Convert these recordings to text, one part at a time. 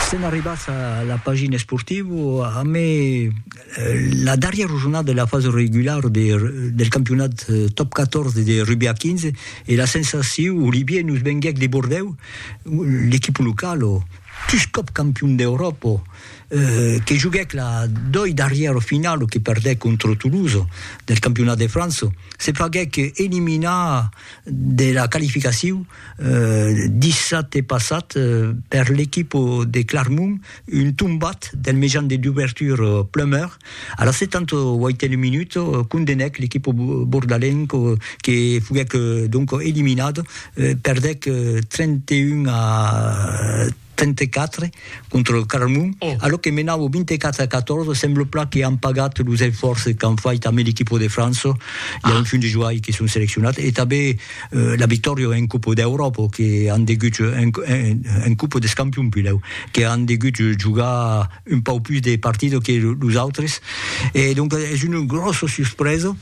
Sèn arribats a la pagina esportiva amb la darrièra jornada de la fasa regulara del campionat Top 14 de rugbi a 15 e la sensacion, Olivier, nos venguèc de Bordèu, l'equipa locala, pus còp campion d'Euròpa, que joguèc la doi darrièra finala que perdèc contra Toulouse del campionat de França, se faguèc eliminar de la qualificacion. dissabte passat per l'equipa de Clarmont, un tombat del mejan de dubertura Plummer a la 78a minuta condenèc l'equipa bordalenca que foguèc donc eliminada, perdèc 31 a 34 contra lo Carmon, a lo que menam au 24 a 14, sembla plan que an pagat los esfòrces qu'an fait tanben l'equipa de França, i a un fin de joai que son seleccionats, e tanben la victòria en Copa d'Euròpa que an degut, en Copa des Campions pilhèu, que an degut jogar un pauc pus de partidas que los autres, e donc es una gròssa suspresa.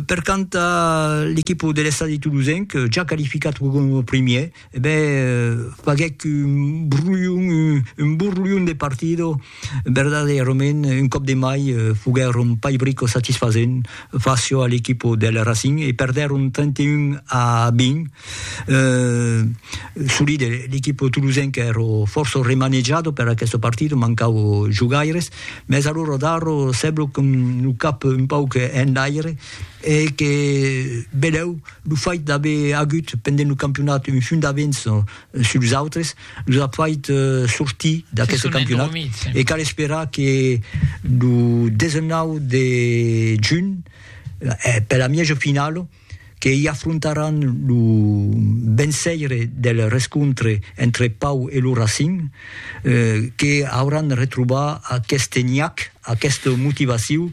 Per quant a l'equipa de l'Estadi Toulousain, que ja qualificat coma primièr, E ben, faguèc un borlhon, un borlhon de partido, verdadeirament, un còp de mai, foguèron pas brico satisfasent facio a l'equipo del Racing e perdèron 31 a 20. Eh, solide, l'equipo tolosenc ero fòrça remanejado per aqueste partido, mancau jogaires, mès alora Darro sèblo qu'un lo cap un pauc enlaire e que belèu, Lo fait d'aver agut pendent lo campionat un funt d'avenç sus los autres los a fait sortir d'aqueste campionat e cal esperar que lo 19 de junh per la mièja finala que i afrontaràn lo vençaire del rescontre entre Pau e lo Racing que auràn retrobar aqueste niach, aquesta motivaciu.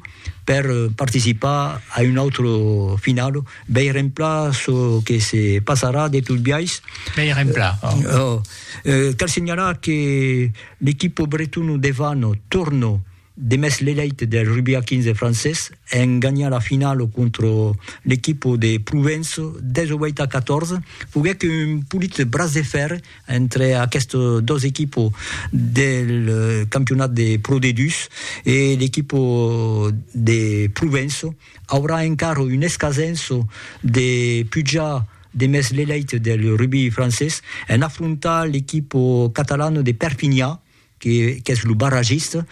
per participar a un autre final. Vei remplar çò que se passarà de tot biais. Vei remplar. Oh. Eh, cal senhalar que l'equipo bretona de Vano torna de mès l'elèit del rugbi a 15 francés en ganhar la finala contra l'equipo de Provença 18 a 14. Foguèc un polit bras de fèrre entre aquestes dos equipos del campionat de Pro D2 e l'equipo de Provenço, aurà encara un escasenço de pujar demest l'elèit del rugbi francés en afrontar l'equipo catalano de Perpinha, qu'es lo barragista,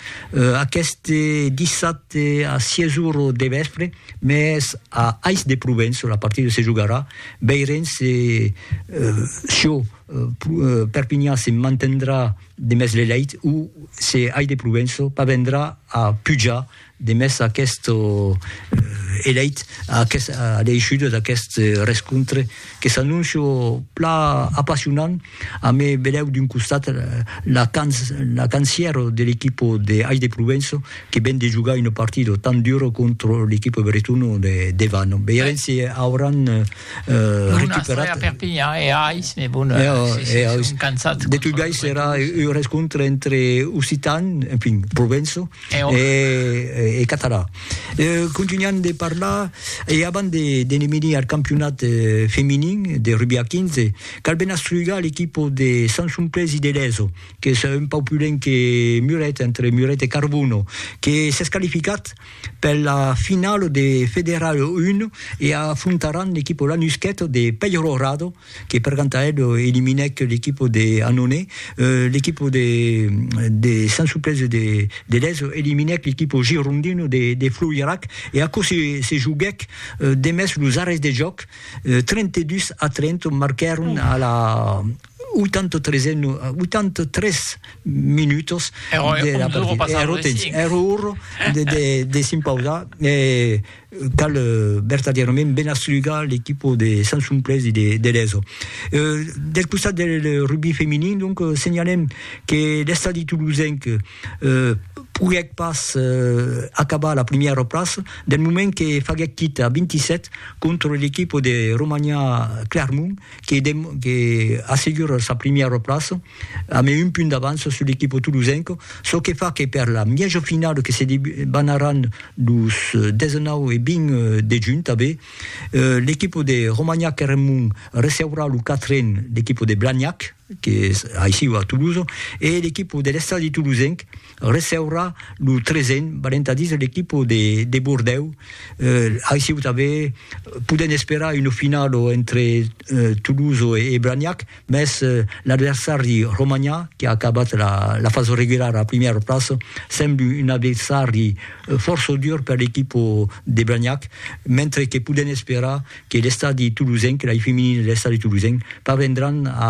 aqueste dissabte a 6 ora de vèspre, mès a Ais de Provença la partida se jogarà, veirem se çò Perpinhan se mantendrà demest l'elèit o se Ais de Provença parvendrà a pujar Demest aqueste eleit a l'eishuda d'aquest rescontre que s'anóncia pla apassionant a me velèu d'un costat la cancièra de l'equipa de Ais de Provença que ven de jogar una partida tan dura contra l'equipa bretona de devan veirem si auràn recuperat de tot biais serà un rescontre entre occitans, enfin Provença e catalan. Contunhan de parlar e abans de ne venir al campionat feminin de rugbi a 15, cal ben astrugar l'equipa de Sant Somplés i de Leso, qu'es un pauc plus lent que Muret, entre Muret e Carbono, que s'es qualificat per la finala de Federal 1 e afrontaràn l'equipa Lanusqueta de Peyrorado, que per Cantaed eliminèc l'equipo de Annonay, l'equipo de de Sant Suplèci de de Lèso eliminèc l'equipo girondino de de Floirac e aquò se se joguèc demest los arrèsts de jòc, 32 a 30 marquèron a la 83 e 83 minutos de la partida, èra temps, èra ora de de de s'impausar e Cal vertadièrament ben aslugar l'equipo de Sansumplés e de Leso. Del costat del rugbi feminin, donc, senhalem que l'Estadi Tolosenc poguèc pas acabar a la primièra plaça, del moment que faguèc quita a 27 contra l'equipo de Romaniá Clermont que assegura sa primièra plaça. Amé un punt d'avança sul equipo tolosenco, çò que fa que per la mièjo finala que se debanaràn los 19 e 20 de junh tanbé, l'equipo de Romagnac-Eremont receurà lo quatren l'equipo de Blagnac, que es aicí a Tolosa, e l'equipo de l'Estadi Tolosenc, receurà lo tresen balentadís de l'equipo de, de Bordèu. Eh, aissiu tanben podem esperar una finalo entre eh, Toulouse e, e Blagnac, mès eh, l'adversari romanhà, que ha acabat la, la fase regulara a primièra plaça, sembla un adversari eh, fòrça dur per l'equipo de Blagnac, mentre que podem esperar que l'estadi toulousenc, l'ai feminin de l'estadi toulousenc, parvendràn a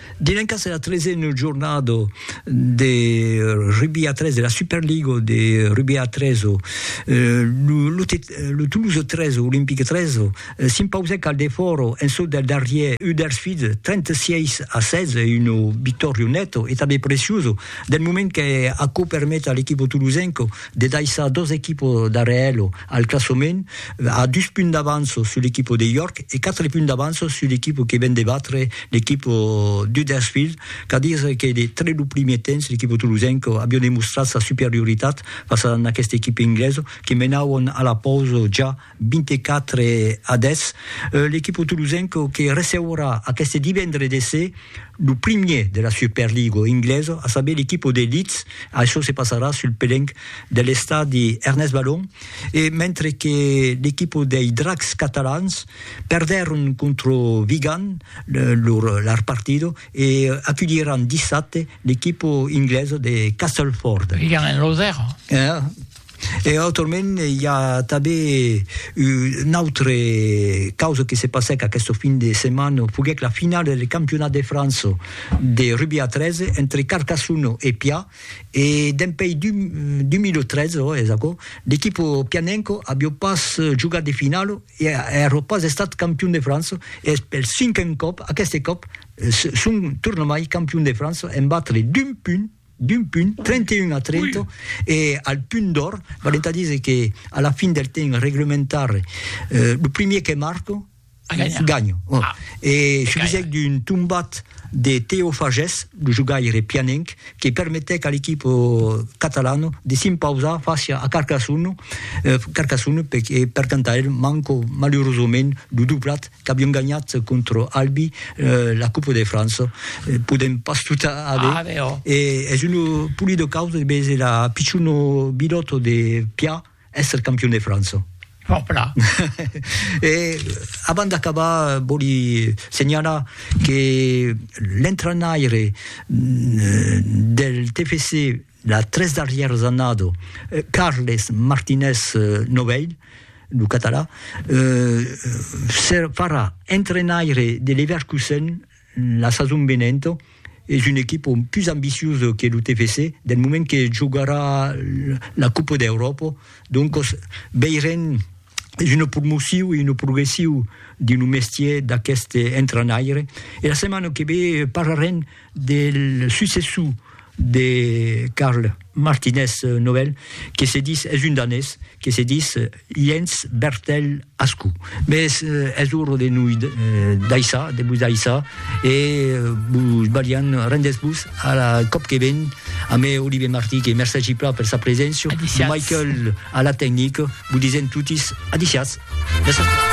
Dilencas era tresen jornada de rugbi a tres, de la Superliga de rugbi a tres, lo Toulouse 3, Olympique 3, s'impausèc al defòra en çò del darrièr Huddersfield 36 a 16, una victòria neta e tanben preciosa del moment que aquò permet a l'equipa tolosenca de daissar dos equipas darrèr ela. Al classement, a dus punts d'avanço sul equipo de York e quatre punts d'avanço sul equipo que ven de batre l'equipo d'Huddersfield, qu'a dire que de tre lo primier temps l'equipo tolosenco avió demostrat sa superioritat fas a n'aqueste equipe ingleso que menauon a la pausa ja 24 a 10. L'equipo tolosenco que receurà aqueste divendre de ser lo primier de la Superligo ingleso, a saber l'equipo de Leeds, açò se passarà sul pelenc de l'estadi Ernest Balon e mentre que l'equipa dei Dracs catalans perdèron contra Vigan lor partida e aculhiràn dissabte l'equipa inglesa de Castleford. Vigan en lo 0. E autrament i a tanben una autra causa que se passèc aquesta fin de setmana, foguèc la finala del Campionat de França de rugbi a 13 entre Carcassona e Pià E dempèi 2003, ò, es aquò, l'equipo pianenco avió pas jogat de finalo e avió pas estat campion de França, e es pel cinquen còp, aqueste còp, son tornamai campion de França en batre d'un punt, d'un punt, 31 a 30, e al punt d'òr, valent a díser que a la fin del temps reglementari, lo primier que marca, Ganha. Ah. E subisèc d'un tombat de Teo Fages, lo jogaire pianenc, que permetèc a l'equipa catalana de s'impausar fàcia a Carcassonne, Carcassonne per, e per tant a el manca malurosament lo doblat qu'avián ganhat contra Albi la Copa de França. Podèm pas tot aver. E es una polida causa de veser la pichona bilòta de Piat, Èsser campion de França. Òpla! E abans d'acabar, vòli senhalar que l'entrenaire del TFC las tres darrièras annada, Carles Martínez Novell, lo catalan, farà entrenaire de Leverkusen La sason venenta es un equipa pus ambiciosa que lo TFC del moment que jogarà la Copa d'Euròpa, doncas veirem, es una promocion e una progression dins lo mestièr d'aquest entrainaire e la setmana que ve parlarem del successor de Karl Martinez Nobel que se ditz, es un danés, que se ditz, Jens Bertel Ascou. Mès es ora de noi daissar, de vos daissar, e vos balhan, rendètz-vos a la còp que ven, amé Olivier Martí, que mercègi plan per sa preséncia, Michael a la tecnica, vos disèm totis adiciatz!